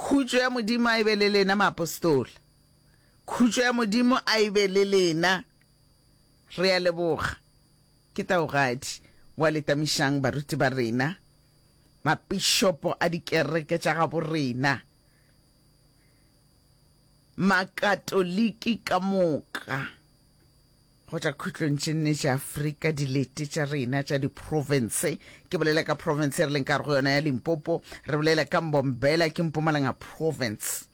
Khutšo ya Modimo a e be le lena, maapostola. Khutšo ya Modimo a e be le lena. Re a leboga, ke taogadi wa letamišang baruti ba rena, mapišopo a dikereke tša gabo rena, Makatoliki ka moka. Go tšwa khutlong tše nne tša Afrika, dilete tša rena tša diprovince, ke bolela ka province e re leng ka go yona ya Limpopo, re bolela ka Mbombela, ke Mpumalanga province,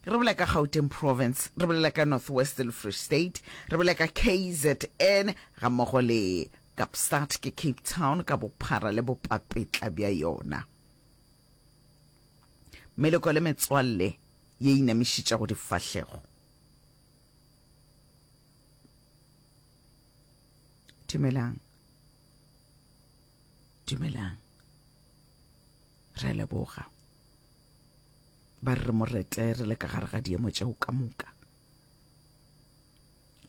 re bolela ka Gauteng province, re bolela ka North West le Free State, re bolela ka KZN ga mmogo le Kapstad, ke Cape Town ka bophara le bopapetla bja yona. Meloko le metswalle ye inamišitšago difahlego. dumelang dumelang re leboga ba re moretle re le ka gare ga diemo tšeo ka moka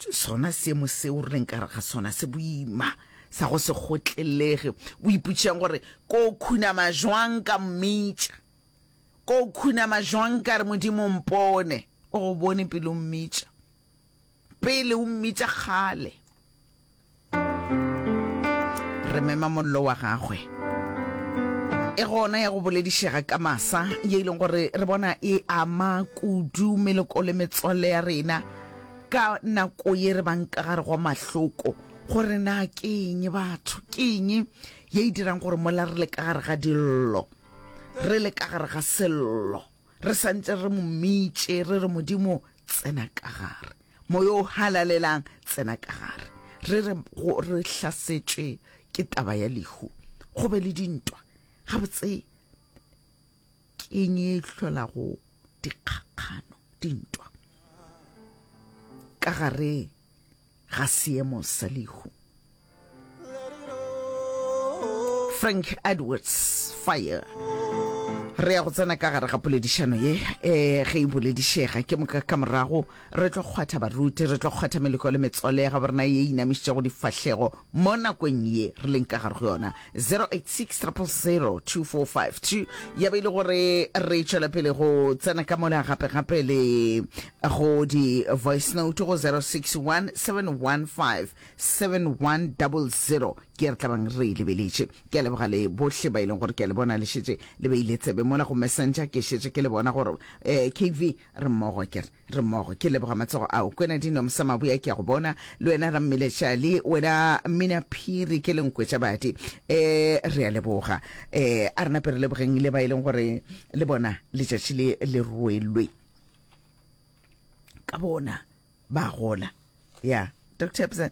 sona seemo seo re leng kare ga sona se boima sa go se gotlelege o iputšeng gore ko khunama jwang ka mmitša ko khunama jwang ka re modimo mpone O go bone pele o mmitša, pele o mmitša kgale. Re mema mollo wa gagwe. E gona ya go boledišega ka masa, ye e leng gore re bona e ama kudu meloko le metswalle ya rena ka nako ye re bang ka gare go mahloko gore na ke eng batho ke eng ye e dirang gore mola re le ka gare ga dillo re le ka gare ga sello re sa ntse re mo mmitše re re modimo tsena ka gare moya o halalelang tsena ka gare re re go re hlasetšwe ke taba ya lehu go be le dintwa gabotse keng e hlolago dikgakgano dintwa ka gare ga seemo sa lehu frank edwards fire re ya go tsena ka gare ga poledišano ye um ge e boledišega ke moka ka morago re tlo kgwatha baruti re tlo kgwatha meleko le metswalle ya gabo rena ye e inamišitšego difahlego Mo nakong ye re leng ka gare go yona, 0860002452, ya be e le gore re tšwela pele go tsena ka mola gape-gape le go di-voice note go 0617157100 ke re tlabang re e lebeletše. Ke a leboga le bohle ba e leng gore ke a le bona le šetše le beile tsebe mola go messenger, ke šetše ke le bona gore um kv re mmogo ke re. Re mmogo, ke leboga matsogo ao. Kwena Dino Msamabuya ke a go bona, le wena Rammile Chali, wena Mmina Phiri ke lenkwetša badi. E, re a leboga. E, a re nape re lebogeng le ba e leng gore le bona letšatši le le rwelwe ka bona ba gola. Ya, Dr. Ebsen.